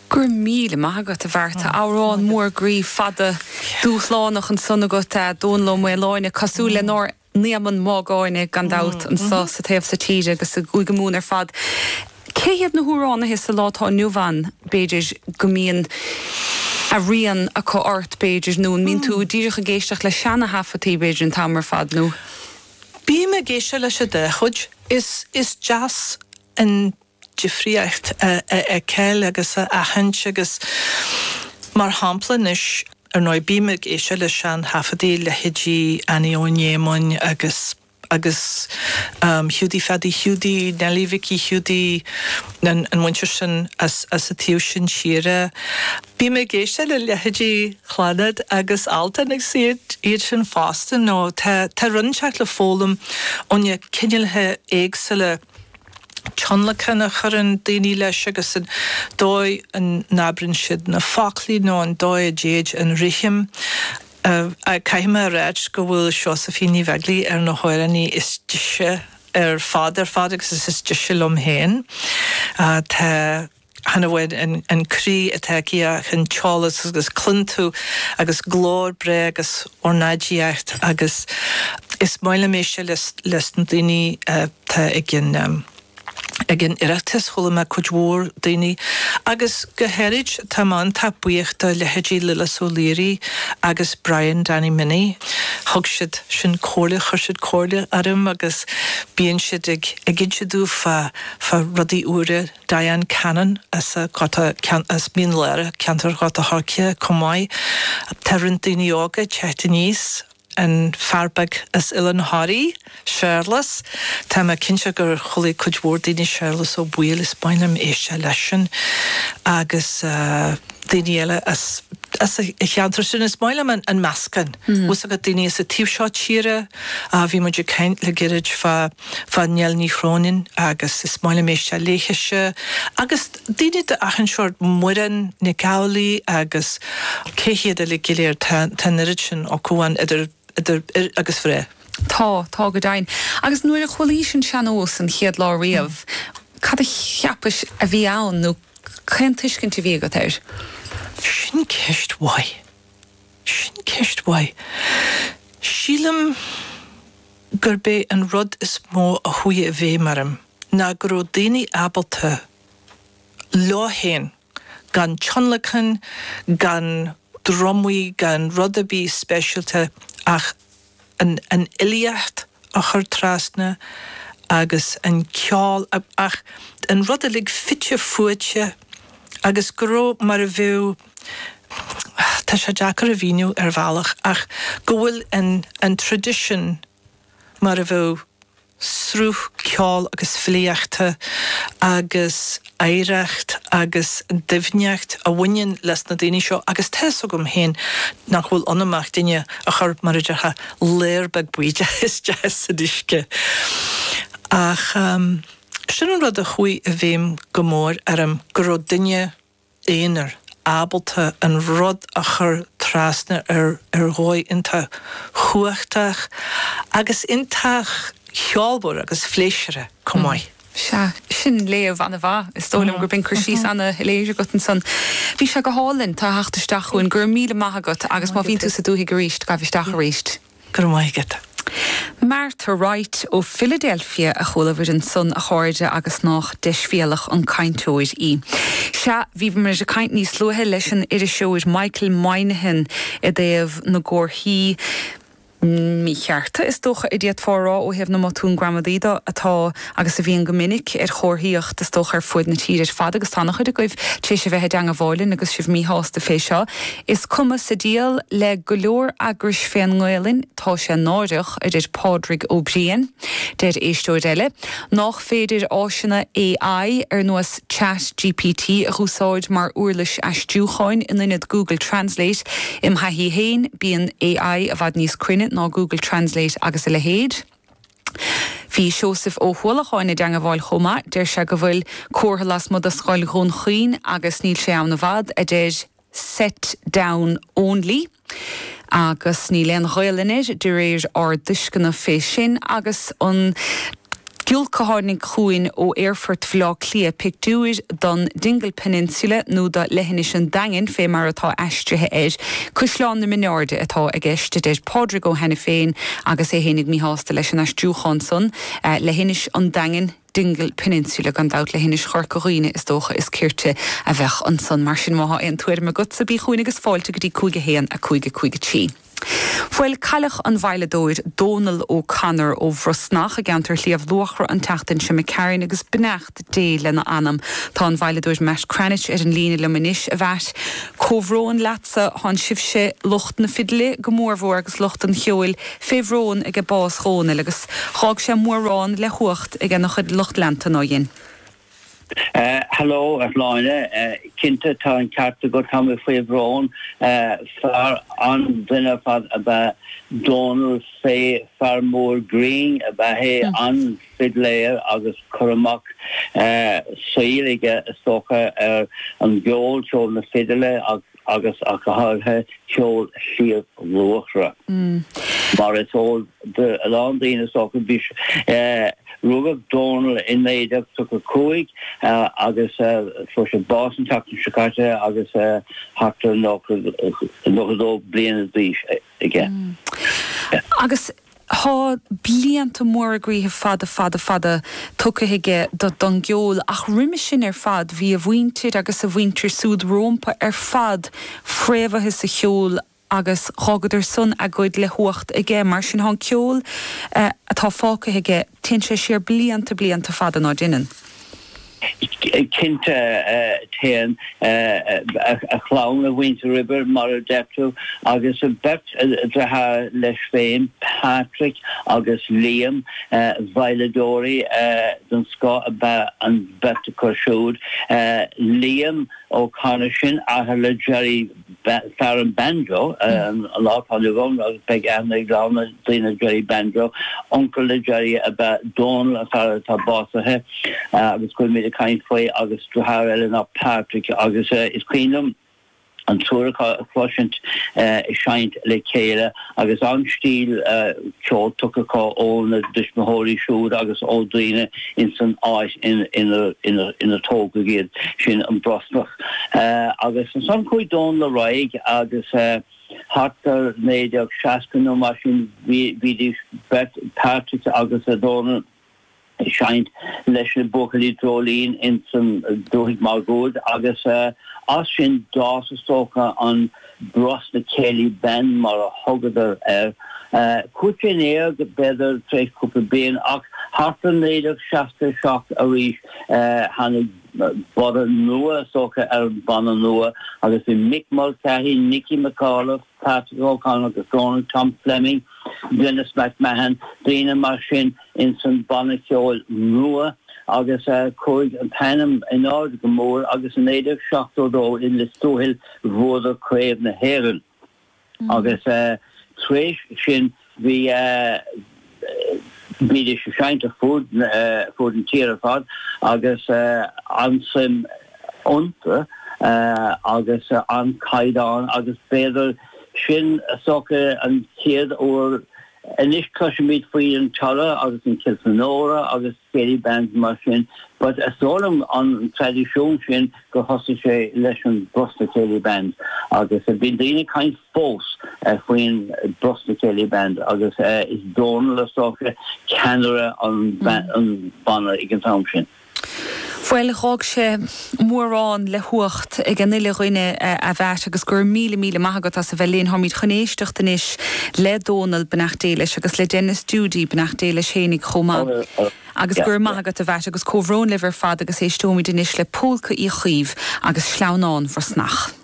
Go raibh míle maith agat, a Bhreanda. Amhrán mór groí, fada, dúshlánach ansan agat, Dónall Ó Maoláine, cosúil lenár n-Éamonn Mágáine, gan dabht, anso sa taobh so tíre agus i gCúige Mumhan ar fad. Cé hiad na hamhránaithe sa lá atá inniu ann, b'fhéidir, go mbíonn a rian acu ort, b'fhéidir, nó an mbíonn tú díreach ag éisteacht le seana thaifeadtaí, b'fhéidir, an t-am ar fad, nó. Bím ag éisteacht leis an dá chuid. Is, is deas an difríocht a fheiceáil agus a aithint agus mar shampla anois, ar ndóigh, bím ag éisteacht le sean-thaifeadaí, leithéidí Annie Eoghain Éamoinn agus agus Hiúdaí Pheadaí Hiúdaí, Neilí Mhicí Hiúdaí, an mhuintir sin as an taobh sin tíre. Bím ag éisteacht le leithéidí Chlannad agus Altan agus iad sin fosta nó tá, tá rud inteacht le foghlaim ó na cineálacha éagsúla tionlacan a chuireann daoine leis agus an dóigh a n-abrann siad na foclaí nó an dóigh a dtéid an rithim. Caithfidh mé a ráit go bhfuil Seosaifín Ní Bheaglaoich ar na hamhránaithe is deise ar fad ar fad agus is, is deise liom féin. Tá. Chan amháin an croí atá aici ach an t-eolas agus cluin tú agus glór breá agus ornáidíocht agus is maith liom é seo leis na daoine atá ag an ag an Oireachtas, chuala mé cuid mhór daoine agus go háirid, tá mé iontach buíoch do leithéidí Lillis Ó Laoire agus Brian Danny Minnie, thug siad sin comhairle, chuir siad comhairle orm agus bíonn siad ag ag inse domh fá fá rudaí ar uaire. Diane Cannon as Mín Lárach, ceantar Ghort a' Choirce, chomh maith. Tá roinnt daoine óga ag teacht aníos, an fear beag as Oileán Thoraí, Séarlas, tá mé cinnte gur chualaidh cuid mhór daoine Séarlas Ó Baoill is maith liom éisteacht leisean agus daoine eile as an cheantar sin. Is maith liom an meascán, uasal le daoine as an taobh seo tíre, bhí muid ag caint le gairid fá. fá Nell Ní Chróinin agus is maith liom éisteacht léithise agus daoine d'achan seórt, Muireann Nic Amhlaoibh agus cé hiad eile go léir, tá an oiread sin acu ann idir fhir agus mhná. Tá, tá go deimhin. Agus nuair a chualaís an seannós an chéad lá riamh, cad a cheapais a bhí ann nó cén tuiscint a bhí agat air? Sin ceist mhaith. Sin ceist mhaith. Sílim. gurb é an rud is mó a chuaigh i bhfeidhm orm ná go raibh daoine ábalta, leo féin, gan tionlacan, gan dramhaíl, gan rud ar bith speisialta ach an fhilíocht a chur trasna agus an ceol, ach an rud uilig fite fuaite agus go raibh mar a bheadh. tá sé deacair a mhíniú ar bhealach ach go bhfuil an traidisiún mar a bheadh sruth ceoil agus filíochta agus oidhreacht agus doimhneacht a bhaineann leis na daoine seo agus tá fhios agam féin nach bhfuil ionam ach duine a chur, mar a déarfá, léar beag bídeach isteach san uisce. Ach sin an rud a chuaigh i bhfeidhm go mór orm, go raibh duine. aonair, ábalta an rud a chur trasna ar ar dhóigh iontach chumhachtach agus iontach cheolmhar agus phléisúrtha chomh maith. Sea, sin léamh an-mhaith. Is dóigh liom gurb in cur síos an-shoiléir agat ansan. Bhí sé go hálainn. tú a theacht isteach chugainn. Go raibh míle maith agat agus má bhíonn tú sa dúthaigh arís, gabh isteach arís. Go raibh maith agat. Martha Wright ó Philadelphia a chuala muid ansan, a chairde, agus nách deisbhéalach an cainteoir í. Sea, bhíomar ag caint níos luaithe leis an iriseoir Michael Moynihan i dtaobh na gcomharthaí míchearta, is dócha, a d'fhéadfá a rá ó thaobh na mbotún gramadaí de, atá agus a bhíonn go minic, ar chomharthaíocht, is dócha, ar fuaid na tíre. Fad, agus tá an-chuid agaibh tar éis a bheith i dteangmháil linn agus sibh míshásta fé seo, is cuma sa dial le go leor eagrais fén nGaolainn, tá sé náireach, a deir Pádraig Ó Briain. Deir éisteoir eile, nách féidir áiseanna AI, ar nós Chat GPT, a dh'úsáid mar úirlis aistriúcháin, in inead Google Translate. Im thaithí fhéin, bíonn AI i bhfad níos cruinne ná Google Translate agus a leithéid. Bhí Seosamh Ó hUallacháin i dteangamháil chomh maith, deir sé go bhfuil comhartha leasmuigh de scoil Dhún Chaoin agus níl sé ann i bhfad, a deir Set Down Only agus níl aon Ghaolainn air, de réir ár dtuisceana fé sin, agus an giolc a tháinig chugainn ó aerfort Bhaile Átha Cliath, pictiúir don Dingle Peninsula nó do Leithinis an Daingin fé mar atá aistrithe acu. Caisleán na Mináirde atá i gceist, a deir Pádraig Ó hAiniféin, agus é fhéinig míshásta leis an aistriúchán san, Leithinis an Daingin, Dingle Peninsula, gan dabht, Leithinis Chorca Dhuibhne, is dócha is cirte a bheadh ansan. Mar sin, má thá aon tuairim agatsa, bí chughainn agus fáilte go dtí 5 1 5 5 3. Bhuel, cailleadh an veidhleadóir Dónal O'Connor ó Bhrosnach i gceantar Shliabh Luachra an tseachtain seo, mo chairde, agus beidh. D lena anam. Tá an veidhleadóir Matt Cranitch ar an líne liom anois, a Mhatt. Comhbhrón leatsa. Tháin sibhse, lucht na fidle go mórmhór agus lucht an cheoil, fé bhrón aige bás Dhónaill agus d'fhág sé mórán le huacht ag ana chuid lucht leanta nár dhein. Hello a Shláine. Cinnte tá an ceart agat, tá mé faoi bhrón. Fear an-duine ar fad ab ea Dónall, fé fear mór grinn ab ea é, an. fidléir agus cur amach saoil aige is dócha ar an gceol, ceol na fidile agus ach go háirithe ceol Shliabh Luachra. Mar is eol do a lán daoine is dócha, rugadh Dónal i 1935 agus fuair sé bás an tseachtain seo caite agus thart ar 92 bliana d'aois aige. Agus Tá blianta móra groíthe fada, fada, fada tugtha aige do don gceol, ach roimhe sin ar fad bhí a mhuintir agus a mhuintir súd rómpa ar fad fréamhaithe sa cheol agus d'fhágadar san a gcuid le huacht aige. Mar sin thá an ceol atá fágtha aige, téann sé siar blianta, blianta fada ná deineann. Cinnte, téann a chlann, a mhuintir roimhe, mar a deir tú, agus beirt dearthár leis féin, Patrick agus Liam. Veidhleadóirí den scoth ab ea an bheirt acu siúd. Liam O'Connor sin, athair le Gerry. fear an banjo, an lá atá inniu ann agus beidh aithne ag lán daoine ar Gerry Banjo. Uncail le Gerry ab ea Donal, an fear atá básaithe agus go bhfuil mé ag caint faoi, agus deartháir eile ná Patrick agus is cuimhin liom an triúr acu a chloisint ag seinnt le chéile. agus an-stíl ceoil tugtha acu óna dtuismitheoirí siúd agus ó dhaoine ins an áit inar tógadh iad, sin an Brosnach. Agus ansan chuaigh Dónal ar aghaidh agus thart ar 1960 nó mar sin bhídís beirt, Patrick agus Dónal, ag seinnt leis na Buachaillí Dreoilín ins an dúthaigh máguaird agus as sin d'fhás is dócha an Brosna Céilí Band mar a thugadar air. Chuaigh sé in éag b'fhéidir tar éis cúpla bliain ach thart ar 1967 arís tháinig borradh nua is dócha ar an bhanna nua agus bhí Mick Mulcahy, Nicky McAuliffe, Patrick O'Connor agus Dónal, Tom Fleming, Denis McMahon, daoine mar sin ins an banna ceoil nua agus a chuaigh an t-ainm in airde go mór agus in 1972 i Lios Tuathail bhuadar Craobh na hÉireann agus tar éis sin Bhídís ag seinnt ar fud na tíre ar fad agus an-suim iontu agus an-chaighdeán agus b'fhéidir sin is dócha an chéad uair. Anois cloisimid faoi an Tara agus an Kilfenora agus. céilí bands mar sin but is dóigh liom an traidisiún sin gur thosaigh sé leis an Brosna Céilí Band agus bíonn daoine ag caint fós faoin Brosna Céilí Band agus Dónal is dócha ceannaire an bhanna ag an t-am sin. Bhuel, dh'fhág sé. mórán le huacht ag an uile dhuine. A Mheait agus go raibh míle míle maith agat as a bheith linn. Táimid chun éisteacht anois le Dónal, beannacht Dé leis, agus le Denis Doody, beannacht Dé leis fhéinig chomh maith. Agus go raibh maith agat a Mheait agus comhbhrón libh ar fad agus éisteoimid anois le Pólca Uí Chaoimh agus Sleamhnán Bhrosnach.